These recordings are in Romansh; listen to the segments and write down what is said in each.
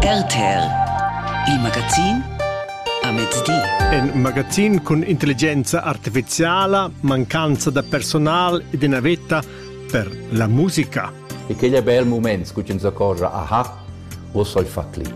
RTL Il magazin a mezdi. In magazin cun intelligenza artificiala, mancanza da personal ed ina vetta per la musica. E quegl è bel moment, scu ins accorgia, aha, vos soll fa clic.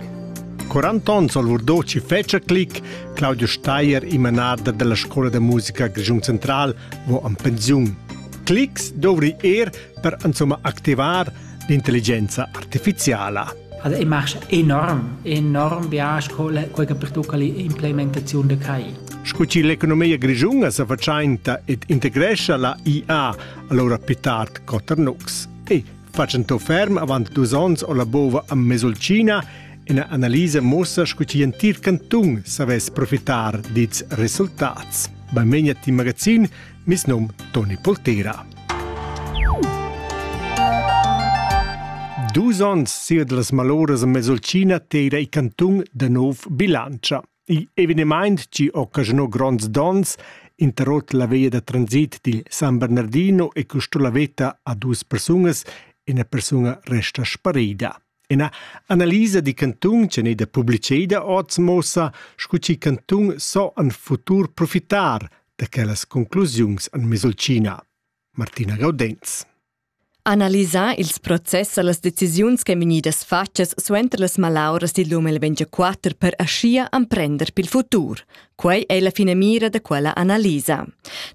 40 onns al Urdoci fece clic, Claudio Steier, i manader della Scuola da Musica Grischun Central, vo an pensiun. Clics dovri er per insomma activar l'intelligenza artificiala. Also ich mache enorm, enorm bias quella che pertucca l'implementazione de CRAI. Sco chi l'economia grischunga sa faciainta ed integrescia la IA allora più tard Coternux e facendo ferm avant dus ons o la bova a Mesolcina ina analisa mossa sco chi entir canton savess profitar dits resultats. Benvegna ti magazin Mes num Toni Pultera. Dus onns sia las maloras a Mesolcina tera i cantun da nov bilancia. Il evenement ci occasionò gronds dons, interrot la via da transit dil San Bernardino e costò la veta a dus persunas e una persona resta sparida. Ina analisa da cantun ch'è gnida publiceda oz muossa sco chi cantun so en futur profitar da quellas conclusiuns en Mesolcina. Martina Gaudenz. Analisar ils process e las decisiuns ch'èn vegnidas fatgas suenter las malauras dil 2024 per aschia emprender pil futur. Quei ei la finamira da quella analisa.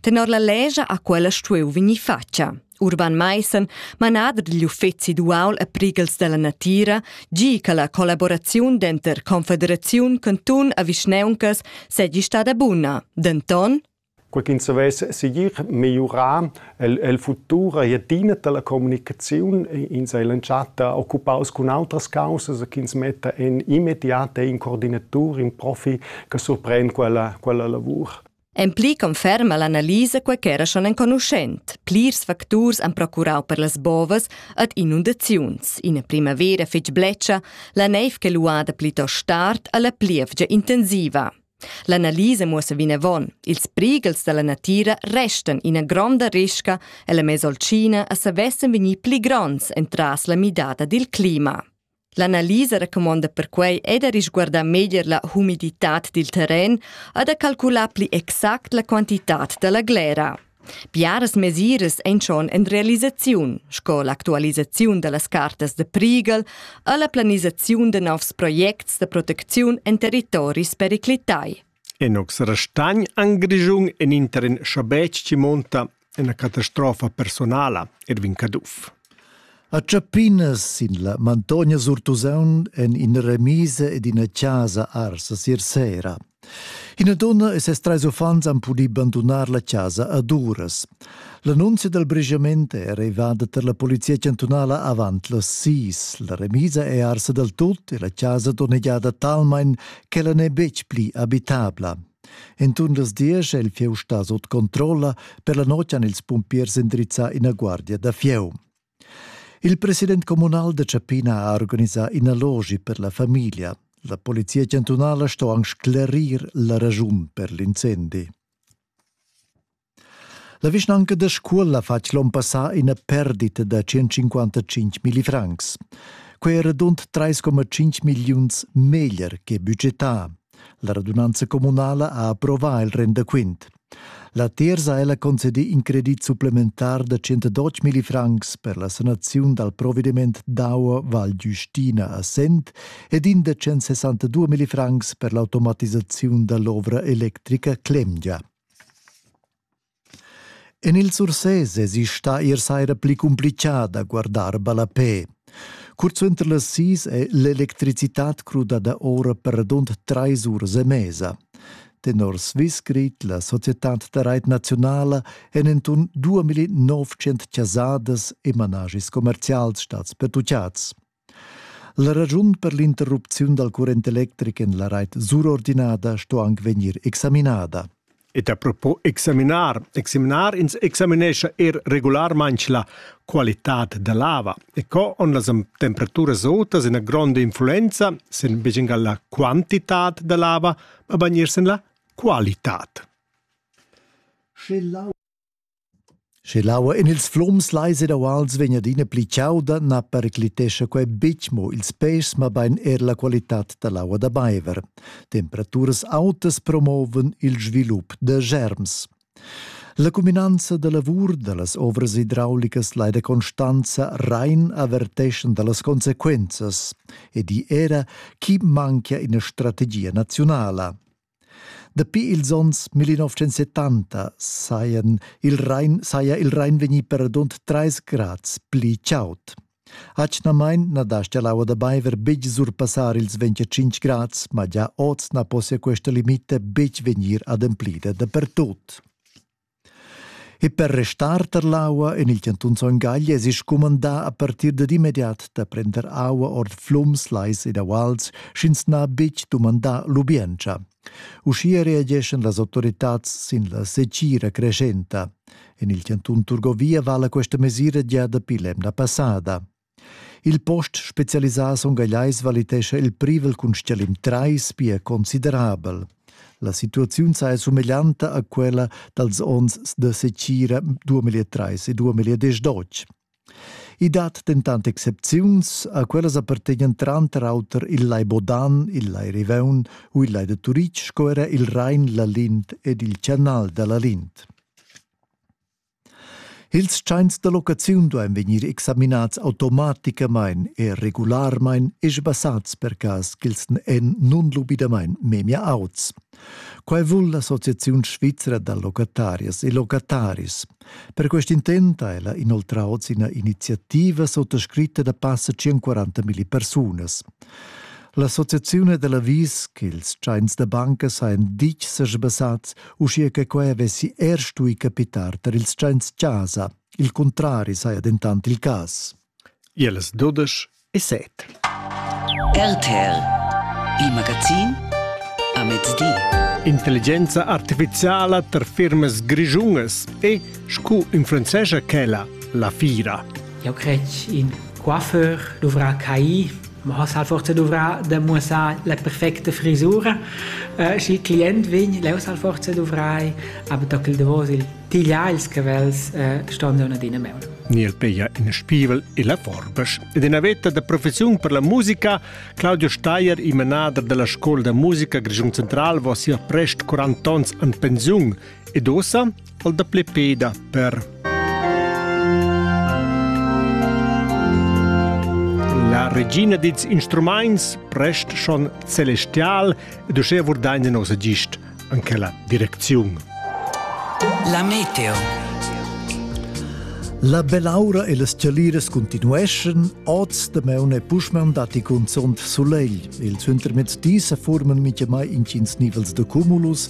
Tenor la lescha ha quella stuiu vegnir fatga. Urban Maissen, manader digl uffeci duaul e prighels dalla natira, gi che la collaboraziun denter Confederaziun, cantun e vischneuncas seigi stada buna. Denton, quei ch'ins savess segir migliurar el, el futur ei adina dalla communicaziun. Ins ei l'entschatta occupaus cun outras causas ch'ins metta en immediat e in coordinatur, in profi che surpren quella, quella lavur. En pli conferma l'analisa quai ch'era schon enconuschent. Plirs facturs han procurau per las bovas ad inundaziuns. Ina primavera fetg bletscha, la neiv che luada plitost tard alla plievgia intensiva. L'analisa muossa vinavon, ils prighels dalla natira restan ina gronda risca e la Mesolcina a savessen vegnir pli gronds entras la midada dil clima. L'analisa recumonda perquai è da risguardar meglier la humiditad dil terren e da calcular pli exact la quantitad da la glera. Biaras mesiras ein schon en realisaziun, sco l'actualisaziun dallas cartas da prigal e la planisaziun da novs projects da protecziun en territoris periclitai. E nus restagn anc grischun en in terren schabetg chi monta ina catastrofa personala, Erwin Caduff. A Tschapinas sin la Mantogna sur Tusaun en ina remisa ed ina casa arsa sir sera. Ina donna e ses trais uffants han pudì bandunar la chasa ad uras. L'annunzia dal brigiament è arrivada tar la polizia chantunala avant las sis. La remisa è arsa dal tut e la chasa donnegiada talmain ch'ella n'è betg pli abitabla. Entun las diesch è il fieu stà sut controlla. Per la notg han ils pumpiers indrizzà ina guardia da fieu. Il president communal da Ciapina ha organisà ina logi per la famiglia. La polizia chantunala sto anc sclerir la raschun per l'incendi. La vischnanca da Scuol ha fatg l'on passà ina perdita da 155 milli francs. Quei era rund 3,5 milliuns meglier che budgetà. La radunanza communala ha approvà il rendaquint. La terza ella concedi in credit supplementar da 112 milli francs per la sanaziun dal provvediment d'aua Val Giustina a Sent ed in da 162 milli francs per l'automatisaziun dall'ovra electrica Clemgia. En il Surses èsi stà ier saira pli cumplitgà da guardar ballapè. Curt suenter las sis è l'electricitad crudada ora perdond trais uras e mesa. Tenor Swissgrid, la societad da rait nazionala, èn enturn 2900 chasadas e managis commerzials stads pertuccads. La ragiun per l'interrupziun dal current electric en la rait surordinada sto anc vegnir examinada. Et a propos examinar, examinar ins examinescha er regularmain la qualitad dell'ava e co on las temperaturas autas ina gronda influenza sin beginga la quantitad dell'ava, ma bagnir sin la qualitad. Sche Sche l'aua en ils flums lais ed auals vegn adina pli chauda, na periclitescha quai betg mo ils pèschs, mabain er la qualitad da l'aua da baiver. Temperaturas autas promovan il svilup da germs. La cuminanza da lavur da las ovras idraulicas lai da Constanza Rhein averteschan da las consequenzas ed i era chi manchia ina strategia naziunala. Dapi ils onns 1970 sajan il Rhein, saja il Rhein vegnì per radund 3 grads pli chaud. Atgnamain na dastia l'aua da baiver betg surpassar ils 25 grads, ma gia oz na possia questa limita betg vegnir ademplida dapertut. E per restar tar l'aua en il chantun Son Gagl èsi scumandà a partir dad immediat da prender aua ord flums, lais ed auals, sch'ins n'ha betg dumandà lubientscha. Uschia reageschan las autoritads sin la setgira creschenta. En il chantun Turgovia vala questa mesira gia dapi l'emna passada. Il post specialisà songagliais valitescha il privel cun stgalim 3 pia considerabel. La situaziun saja sumeglianta a quella dals onns da secira 2003 e 2012. I dat dentant excepziuns, a quellas appartegnan tranter auter il Lai Bodan, il Lai Riveun u il Lai de Turitg sco era il Rain, la Lint ed il Canal da la Lint. Ils tschains da locaziun duain vegnir examinads automaticamain e regularmain e sbassats per cas ch'els èn nunlubidamain memia auts. Quai vul l'Associaziun svizra da locatarias e locataris. Per quest intent ha ella inoltrà oz ina iniziativa sottoscritta da passa 140 milli persunas. L'associazione dell'avvis che ils tschains da banca sajan ditg sa sbassats uschia che quai vessi er stui capitar tar ils tschents-chasa. Il cuntrari saja dentant il cas. Ielas dudesch e set. RTL, il magazin a mezdi. Intelligenza artificiala tar firmas grischungas e, sco influenzescha quella, la fira. Jau cred ch'in coiffeur dovrà cair Ma has halt forsa duvrà da muossar la perfecta frisura. Äh, schi il client vegn, leu s'hal forsa duvrai, aber da quel davos il tigliar ils cavels äh, ston da adina meul. Nil peia in spievel e la forbas. Ed ina veta da professiun per la musica, Claudio Steyer, il manader della scuola da musica Grigiun Central, va sia prest 40 ans an pensiun. Ed ossa, Dal dapli peda per La regina dits instrumaints prest schon celestial ed uschè vurdain in nosa gist an quella direcziun. La meteo. La belaura e las chalires continueschan oz de meune puschmaun dati cunzont solegl. Il zuntermezdi se forman mitjamai intgins nivels de cumulus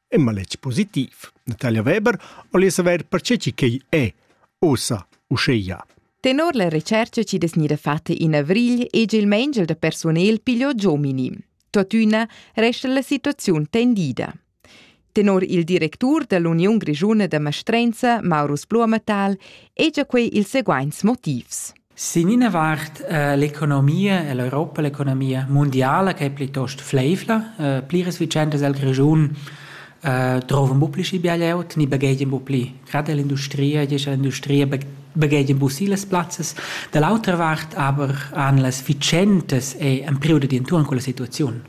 è maletg positiv. Natalia Weber voglia saver perché quei è ossa uscheia. Tenor la recerca ci des gnida fatta in avrigl e il mangel da personel pigliò giomini. Tuttina resta la situazione tendida. Tenor il directur dell'Union Grigiuna da Mastrenza, Maurus Blumenthal, è già quei il seguaints motivs. Sin ina vart eh, l'economia e l'Europa, l'economia mundiala che è plitost fleifla, eh, pliras vicendas el Grischun eh, drovan bu pli schi bia glieud, ni baghegian bu pli. Gerade l'industria, diescha l'industria baghegian bu si las plazzas. Da l'autra vart aber han las vicendas e ein periodo di intorno con la situazione.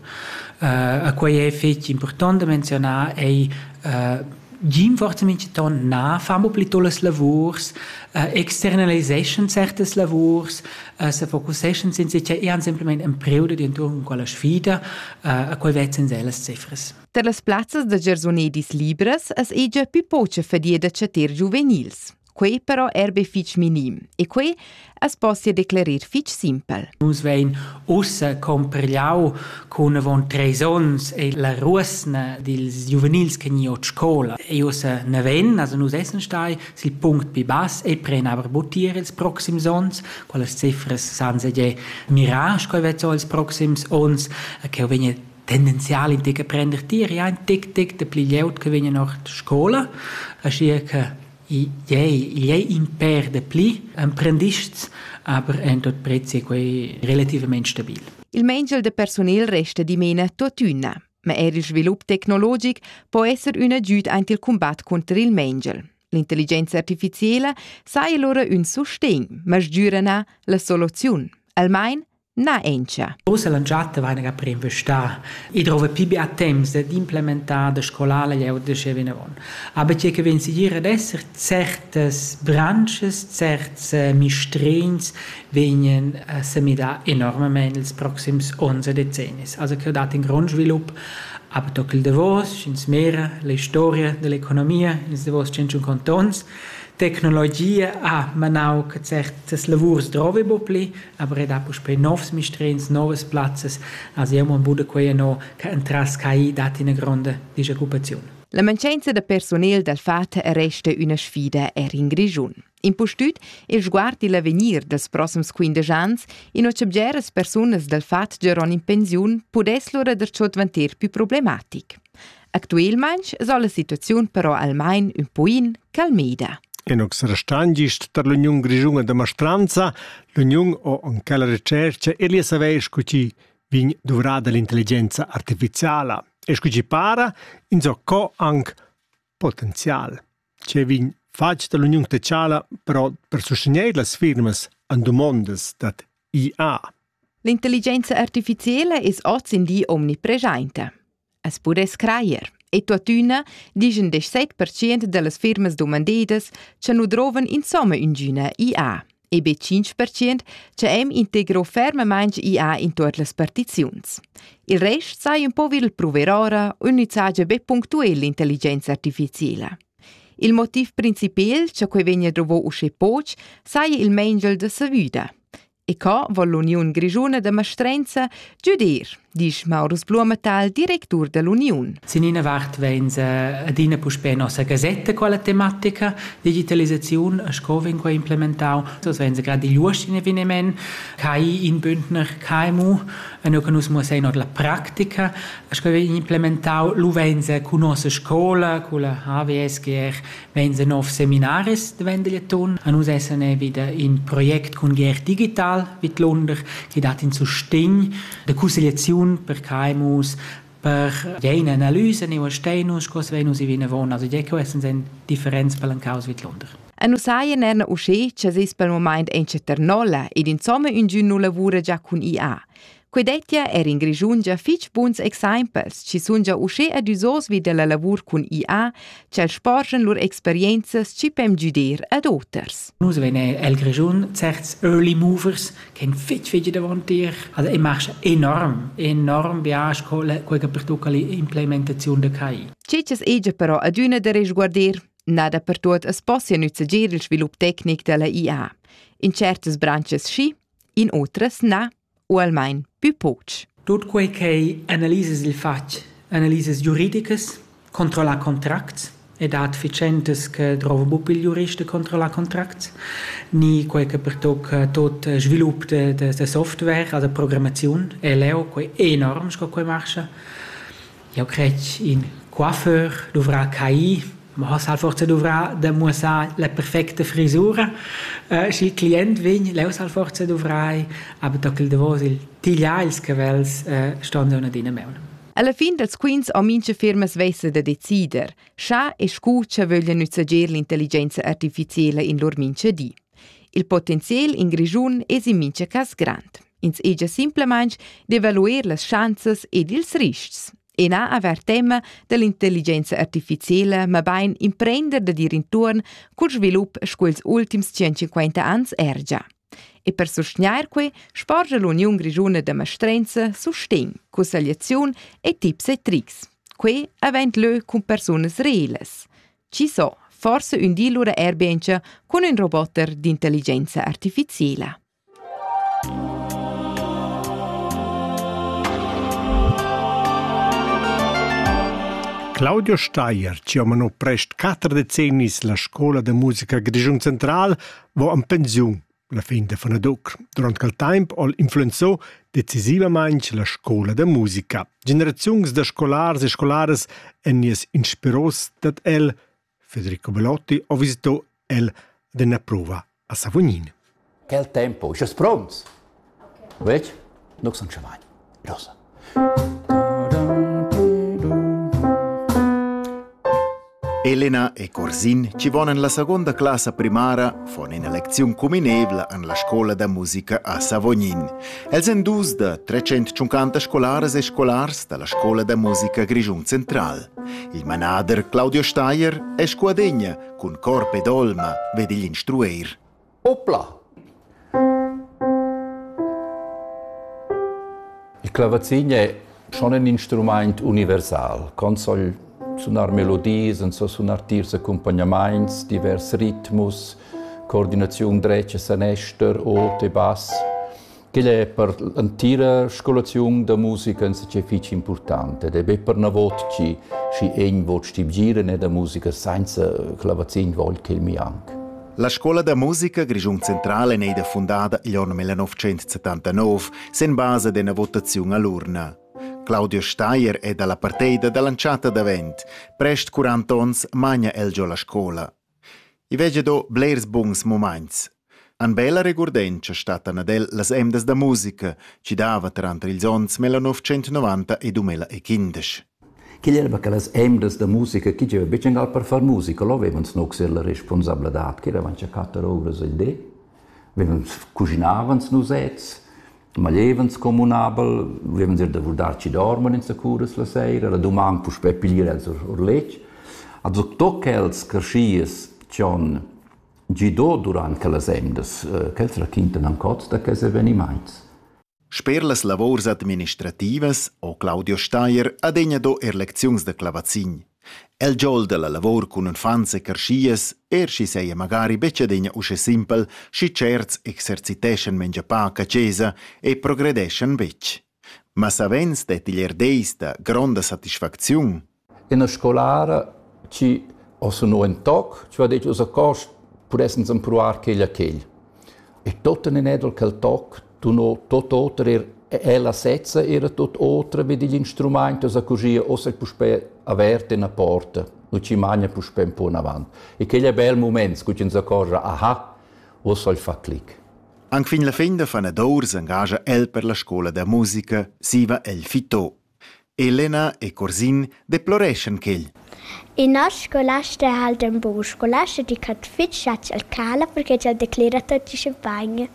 Uh, a quei è fetg important da menzionar ei uh, Rinforzamenti ton na fa mo pli tolas lavurs, uh, externaliseschan certas lavurs, uh, se focuseschan sin si, cioè eran semplicemente en periodo di intorno con quella sfida, uh, a qual vezzan se las cifras. Per las plazzas da giarsunedis libras es ei già più poce fadia da chatter giuvenils. Quei però er be fitg minim e quei as possia declerir fitg simpel. Nus vein ussa compregliau con avon treis onns e la ruosna dils giuvenils che ni ot scola e ussa neven, also nus essen stai sil punct pi bass e pren aber butier ils proxims onns, quelles cifras san se je mirar coi vezzo ils proxims onns, che vegna tendenzial in tic a prender tier ja ein tic tic de pli leut che vegna nach scola, aschi che Tgei, igl ei in pèr dapli emprendists, aber en tot prez ei quei relativamein stabil. Il mengel de personal resta dimena tuotüna, ma er il svilup tecnologic po esser ün agüd aint il combat conter il mengel. L'intelligenza artificiela sai allora ün sustegn, ma sgürana la soluziun, almain Na encha. Ussa la giatta vaina ga preinvestà. I drova pli bia temps d'implementar, da scolar leu da sche vinavon. Aber tge che vegn sigir ad esser certas branches, certs eh, mistrins vegnan eh, a semidar enormement ils proxims 11 decennis. Also che ho dat in grond svilup aber toc il davos, ins mera, la historia dell'economia, ins davos 100 cantons, tecnologia ha manau che certas lavurs drovi bo pli, avredà puspè novs mistrins, novas plazzas. A siamo in Bude quei no che entras CAI dat ina gronda disoccupaziun. La mancanza da personal dal FAT resta üna sfida er in Grischun. Impustüt il sguard il avegnir dels prossums 15 ans, in ho bgeras persunas dal FAT giaron in pensiun pudess lura der ciò dvanter più problematic. Actuelmaing s'ha la situaziun però almain ün poin calmeda. Enox Restangist tar l'Uniun Grischuna da Mastranza, l'uniun o anche la recerca e li saver scu chi vegn dovrada l'intelligenza artificiala e scu chi para, insò co anche potenzial. Ce vegn fatg dall'uniun techala però per sustegner las firmas an domondas dad IA. L'intelligenza artificiela es oz in di omnipresenta. As pudess crajer. E tuottüna dischan 17% da las firmas dumandedas cha nu drovan insomma üngüna IA e be 5% cha hem integro fermamaing IA in tuot las partiziuns. Il rest sai un po vil pruver ora, ün saja be punctuel l'intelligenza artificiela. Il motiv principal cha quei vegna druvò uschè poch saja il mengel da savüda. E co vo l'Uniun Grischuna da Mastrenza giudir, disch Maurus Blumenthal, directur dell'Uniun. Sin ina vart vegn adina puspè nossa gasetta quella tematica digitalisaziun sco vegn quai implementau. Das vegn gerade igl uoschin eveniment, kai in bündner kaimu, e nu che nus muossai not la practica, sco vein implementau lu vegn cun nossa scola, culla HVSGR, vegn nov seminaris de vendigliaton. A nus essan vida in project cun GR Digital vid Lunder, che dat in sustegn de cussegliaziun per caimus, per jener analyse ne uastenus, cos venus i vinavon, also je quests sind differenz palancaus vid Lunder. E nus haien en usché che seis pel moment en Ceternola ed insomma ungün nu lavura già cun IA. Quei dettia er in Grischun gia fitg buns exempels, chi sun gia uschè adüsos vi dalla lavur cun IA, ch'el sporgen lur experienzas chi pem güder ad oters. Nus vein el Grischun certs early movers che fitg fitg davant dir. Also ich mache enorm, enorm bias con quella per tocca l'implementazione de CAI. Cecas egia però adüna da resguarder. Nada per tuot as possia nüzzager il svilup tecnic dalla IA. In certas branches schi, in otras na. u almain pü poch. Tut quei ch'ei analisas il fatg, analisas giuridicas, controllar contracts, e dat efficientas che drova buc il jurist de controllar contracts, ni quei che pertocca tot il svilup de, de, de software, also Programmation, e leo, quei enorm sco quei marscha. Jau cret ch'in coiffeur dovrà cair, ma oz ha'l forsa duvrà da muossar la perfecta frisura. Schi il client vegn, leu s'ha'l forsa duvrai, aber da quel davos il tigliar ils cavels ston sun adina maun. Alla fin dals quints ho mincha firma svessa da decider, scha e scu cha vöglia nüzzager l'intelligenza artificiela in lur mincha di. Il potenziel in Grischun es in mincha cas grand. Ins egia simplamain d'evaluer las schanzas ed ils ristgs e na avair tema dall'intelligenza artificiala, mabain imprender da dir intuorn cul svilup sco ils ultims 150 ans ergia. E per sustgnair quei sporgia l'Uniun Grischuna da mastrenza sustegn, cussegliaziun e tips e trics. Quei avent lö cun persunas reelas. Ci so, forse ün di lura erbiencha cun ün roboter d'intelligenza artificiela. Claudio Steier, chi ho mano prest quatter decennis la scola da musica Grischun Central, vo en pensiun la fin da Fanadoc. Durant quel temp hol influenzò decisivamaing la scola da musica. Generaziuns da scolars e scolaras èn nies inspiros dad el Federico Belotti ha visitò el ad üna prova a Savognin. Quel tempo, sches prompts? Vec? Nu sun scha mai. Prosa. Elena e Corsin ci vonan la seconda classa primara von ina lecziun cuminevla an la scola da musica a Savognin. Els èn dus da 350 scolaras e scolars da la scola da musica Grischun Central. Il manader Claudio Steier è scuadegna cun corp ed olma ved igl instrueir. Opla! Il clavazin è schon in instrumaint universal. Con soll sunar melodies, en so sunar tiers accompagnamaints, divers ritmus, coordinaziun dretg e sanester, ot e bass. Quel è per l'entira scolaziun da musica insatge fitg impurtant ed è be pernavot chi schi egn vot stibgiren e da musica sainza clavazin vogl ch'el mi anc. La scola da musica Grischun Centrale n'è da fundada igl onn 1979 sen basa d'ena votaziun all'urna. Claudio Steier è dalla parteida dall'entschatta davent. Prest 40 onns magna el giò la scola. I veggia do blers buns mumaints. An bella regurdentscha stattan ad el las emdas da musica chi dava tranter ils ons 1990 e 2015. Quel era che las emdas da musica chi gieva betg angal per far musica, lo avevans nux la responsabladad, che eravans a quatter ouras il di. vegn cuginavans nus sezs, maglievans communabel, vevans ir da vurdar chi dorman insacuras la seira, la duman puspè piglier els or letg. Ad tot quels carschias ch'on gido durant quellas emdas, quels raquintan ancot da quels evenimaints. Sper las lavurs administrativas ho Claudio Steier adegna do er lecziuns da clavazin. El giol da la lavur cun unfants e carschias, er schi seia magari betg adegna usche simpel, schi certs exerciteschan mengia pac a chesa e progredeschan vetg. Ma savens det igl er deis da gronda satisfacziun, Ina scolara chi ho sunò ün toc, chi ho det giò sa cost pudessens empruar quegl a quegl. E tuotten in edel quel toc dunò tuot oter eir ella sezza era tuot otra vi digl instrumaint, esa così ossa puspè avert üna porta, nu ci magna puspè ün po anavant. E quel è bel mumaint, scu chi ins accorgia, aha, uossa il fa clic. Anc fin la fin da fanadour s'engagia el per la scola da musica, zieva el fitò. Elena e Curzin deploreschan quel. In nos scolasta ha el in bun scolasta di ch'ha fitg schatg al cala perché ch'el declera tutti sche bagn.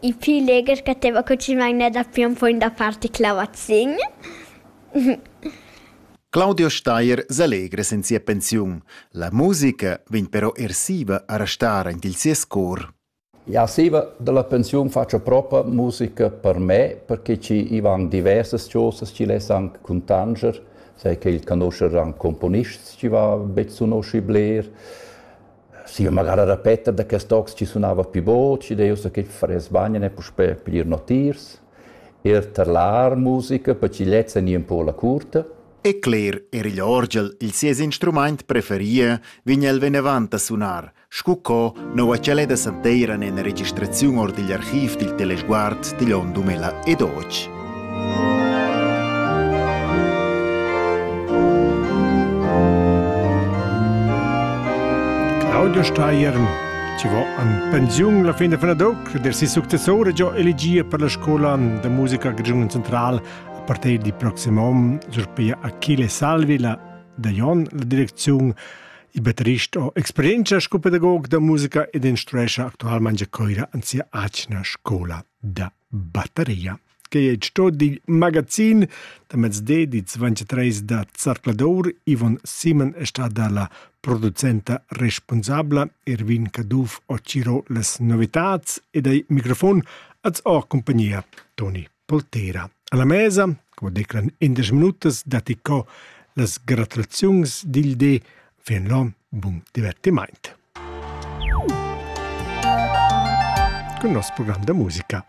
I pli legher ch'ateva cucimagna da fion foin da farti clavazin. Claudio Steier s'allegra en sia pensiun. La musica vegn però ersiva a restar en il sies cor. Jau stiva da la pensiun fatscha propa musica per me, perche chi i van diversas chosas chi l'es anc cuntanger, sai che il conoscher anc componists chi va be sunoschi bler. Stiva magari a repeter da quest tocs chi sunava pi bod, schi deu so che faress bagn e puspè plir notiers. Er tar l'art musica, per chi lezza ni un po la curta. E cler, er igl orgel, il sies instrumaint preferie, vign el venevant a sunar – sco co noua ch'el è da santeira ina registraziun or digl archiv dil telesguard digl onn 2012. Claudio Steyer ci vo an pensiun la fin de Fenadoc, der si successore giò elegia per la scola de musica Grigiun Central a partir di proximum sur pia Achille Salvi, la de Jon, la direcziun Il batterist ho experientscha sco pedagog da musica ed instruescha actualmain a Coira an sia atgna scola da batteria. Quei è sto digl magazin da mezde di 23 da Zarcladour. Ivon Simon è stada la producenta responsabla. Erwin Caduff ho ciro las novitats ed ai microfon az ho compagnia Toni Poltera. Alla mesa, come declan in desch minutas, datti co las gratuaziuns dil di fin lo bun divertiment. Con il nostro programma da musica.